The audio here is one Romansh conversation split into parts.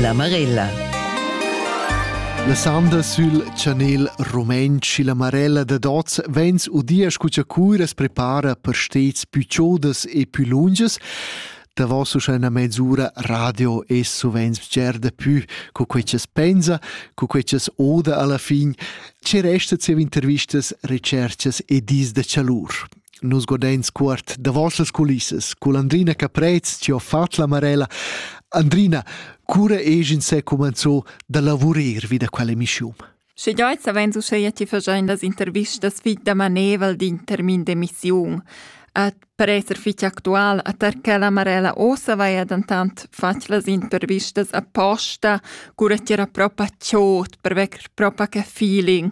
La Marella. La sanda sül chanel rumentsch silla Marella dad oz vegns udia scu cha curas prepara per stets pü chodas e pü lungas davos uschè üna mezz'ura radio e suvent bger da pü co quei ch'es pensa, co quei ch'es oda alla fin, che resta zieva intervistas, recerchas e dis da chalur. Nus godeins cuort davos las culissas cun Andrina Caprez, ti ho fatg la Marella. Andrina, cura egin se cumanzo da lavurer vi da quella missiun? Sche giai savein uscheia ti fagein las intervistas fit da maneval d'in termin d'emissiun. At per esser fitg actual a tar quella Marella ossa vaia dentant fatg las intervistas apposta, cura ti era propa tschot per vecker propa che feeling.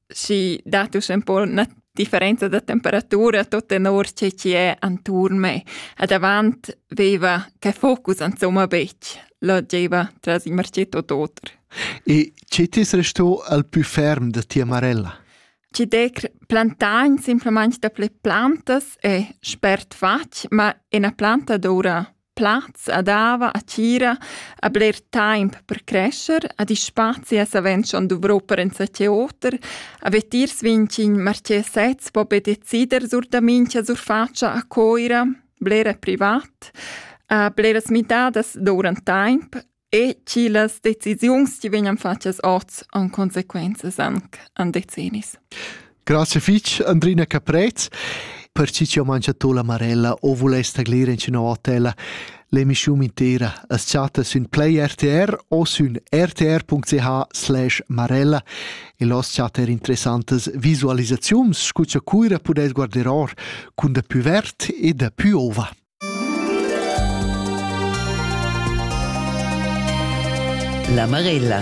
si datus ün po 'na differenza da temperatura tot tenor che chi è anturn me. A davant veva che focus insomma betg, là gieva tras il marcetto d'oter. E che t'es resto al più ferm da tia marella? Ci decr plantain simplemente da ple plantas è spert fatg, ma ena planta doura Plaz a dava, a tgira, a bler taimp per crescher, ad i spazi a savend schon duvrò per enzatgé oter, a vetiers vincin marché sez po be decider sur da mincha surfatscha a Coira, blera privat, a bleras midadas dourant taimp, e chi las decisiuns chi vegnan fatschas hoz han consequenzas anc an decennis. Grazie fich Andrina Caprez per chi chi ho mangiato la marella o vuless taglir in üna hotella. L'emischiun intera as chatta sün Play RTR o sün rtr.ch marella e los chatta er interessantas visualisaziuns scu cha Cuira pudess guarder or cun da pü verd e da pü ova. La Marella